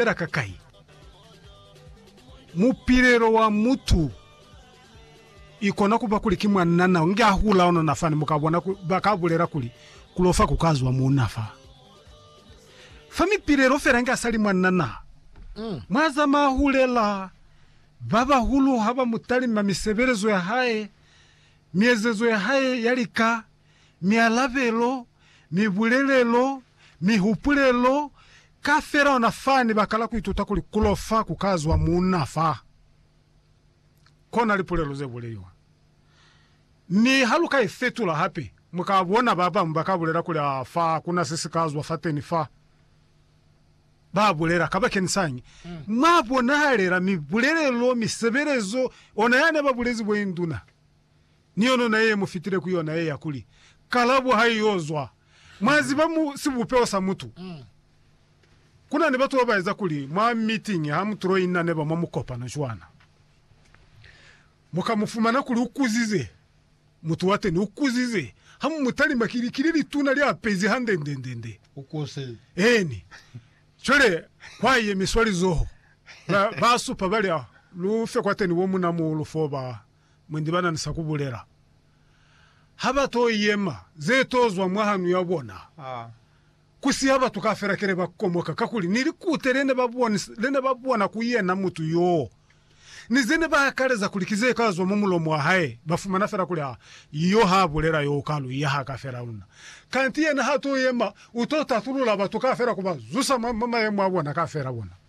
fela ka kai? Mupilelo wa mutu ikona kuba kuli ki mwanna nao nge ahula onona fani mukabona ku, baka bulela kuli kulofa kukazwa muuna fa fa mipilelo fela nge asali mwanna na mwazama ahulela. Babahulu haba mutalima misebelezo ya hae, miezezo ya hae ya lika, mialabelo, mibulelelo, mihupulelo, Ka fela ona fa ni baka la ku ituta kuli ku lofa ku ka zwa munna fa kona lipulelo ze buleliwa. Mi ha lu ka i fetula hape, mu ka bona ba bañwi ba ka bulela kuli, Aa, fa ku na se si ka zwa fateni fa. Ba bulela. Kabakeñisañi? Mwa bonahalela mibulelelo, misebelezo, ona ya ne ba bulezi bo induna. ni yona na ye mu fitile ku yona ye ya kuli, Kalabo ha i yo zwa. Mwa ziba, mu sibupeho sa mutu, ku na ni batu ba ba eza kuli mwa mitingi ha mu tuloi na neba mwa mukopano cwana. Mu ka mu fumana kuli u kuzize, mutu wateni u kuzize, ha mu mu talima ki likili lituna, li apezi hande ndendende. Eeni. Cwale kwa yemiswa lizoho, ba, ba supa, ba li, Lu fe kwateni bo munamuhulu foo ba mwendi ba na ni sa ku bulela, ha ba to yema ze to zwa mwa hanu ya bona, ku siha batu kaufela kile ba komoka, kakuli ni likute le ne ba boni, le ne ba bona ku yena mutu yoo, ni ze ne ba akaleza kuli ki ze ka zwa mwa mulomo wa hae, ba fumana fela kuli, Ha yo ha bulela yoo ka lu ya ha ka fela luna. Kanti yena ha to yema, u to tatulula batu kaufela ku ba zusa mwa mayemo a bona kaufela bona.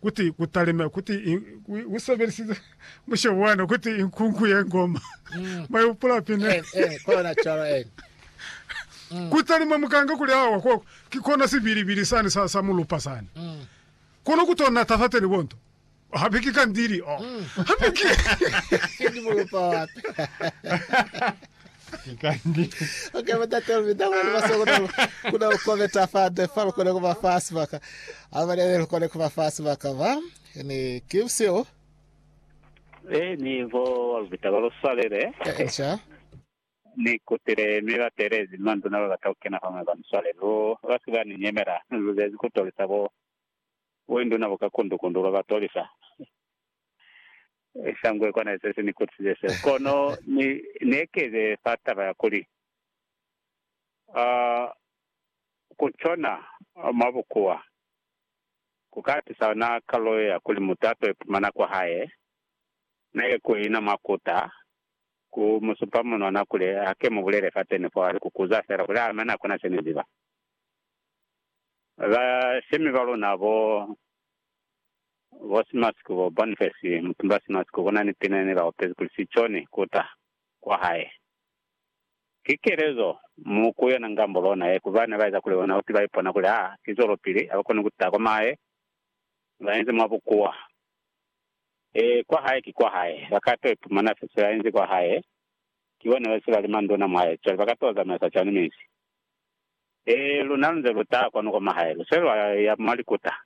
Kuti ku talime, kuti i, u sebelisize mushe wana, kuti i nkungu ye ngoma. Mm. Mwa ipula pine. Eh, eh, kona cwalo, eh. Mm. Ku talima mukanga kuli awa, ko, ki kona sibilibili sani sa, sa mulupa sani. Mm. Kono ku to nata fateni bonto. Hape ki kandili, oh. Mm. Hape ki. Ki mulupa wape. Okay, Batatelo Midama ni Baso kuna kuna ukometa fande fa lukone kuba fa sibaka. Abalele lukone kuba fa sibaka ba ni kimsio E ni vo walubita ba luswalele. e ncha. Ni kutile mi ba telezi manduna ba bata kukena fa mwe ba ni swale. Lu ba si ba ni nyemela. Lu zezi ku tolisa bo bo induna bo ka kundu kundu lwa ba tolisa. Ni sa ngwe kona ze ze ni kutize seo. Kono ni nekeze fa taba ya kuli, uh, ku cona mwa bukuwa ku ka tusa yona kalulo ye ya kuli mutu a to ipumana kwa hae neke ku ina mwa kuta, ku mu supa munwana kuli a ke mu bulele fateni fo, a li, Ku kuza fela kuli a mane a kona se ni ziba. Bashemi ba luna bo Bo Simasiko, bo Boniface Mutumba Simasiko bona ni pina ne ba opezi kuli si cone ku ta kwa hae. Ki kelezo mu ku yona ngambo lona ye ku ba ne ba eza kuli ona uti ba ipona kuli ha ki zwelopili, ha ba koni ku ta kwa mahae, ba inzi mwa bukuwa. Ee, kwa hae ki kwa hae. Ba ka to ipumana fe se ba inzi kwa hae. Ki bo ne ba se ba li manduna mwa hae, cwale ba ka to zamaisa cwani mezi? Ee, luna lu nze lu ta kwanu kwa mahae, lu se lwa ya mwa likuta.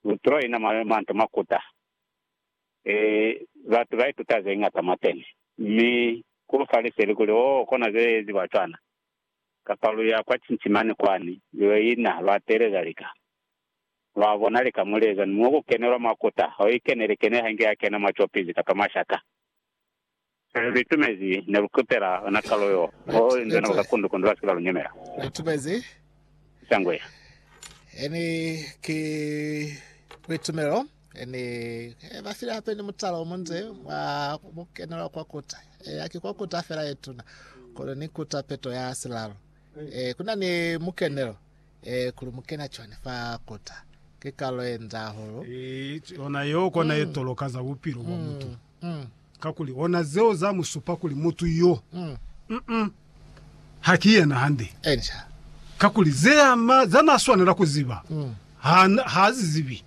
Lu traina manto makuta. E, batu ba ituta ze ñata mwa teni. Mi ku lu fa liseli kuli, Oh, kona ze eziwa cwana. Kapa lu ya kwa cinci mane kwani, lu yo ina, lwa teeleza lika. Lwa bona lika mo li eza, ni mo ku kenelwa makuta. Ha u ikeneli, kene ha inge ya kena mwa copizi kapa mwa shaka. Mwa lu itumezi, ne lu kutela ona kalo yo ho li nzwena ba ka kundu kundu ba si ke ba lu nyemela. Lu itumezi? Shangwe. Eni ki kuitumelo, eni e ba file hape ni mutala o munze wa ku kenelwa kwa kuta. Eya, ki kwa kuta fela ye tuna, kono ni kuta peto ya silalo. E, ku na ni mukenelo. Ee, kuli mukena cwani fa kota? Ki kalo ye nda hahulu. Ki ona yeo kona ye toloka za bupilo bwa mutu, kakuli ona zeo za mu supa kuli mutu yo, mm, ha ki yena hande. Enca. Kakuli ze ama za na swanela ku ziba, ha, ha zi zibi.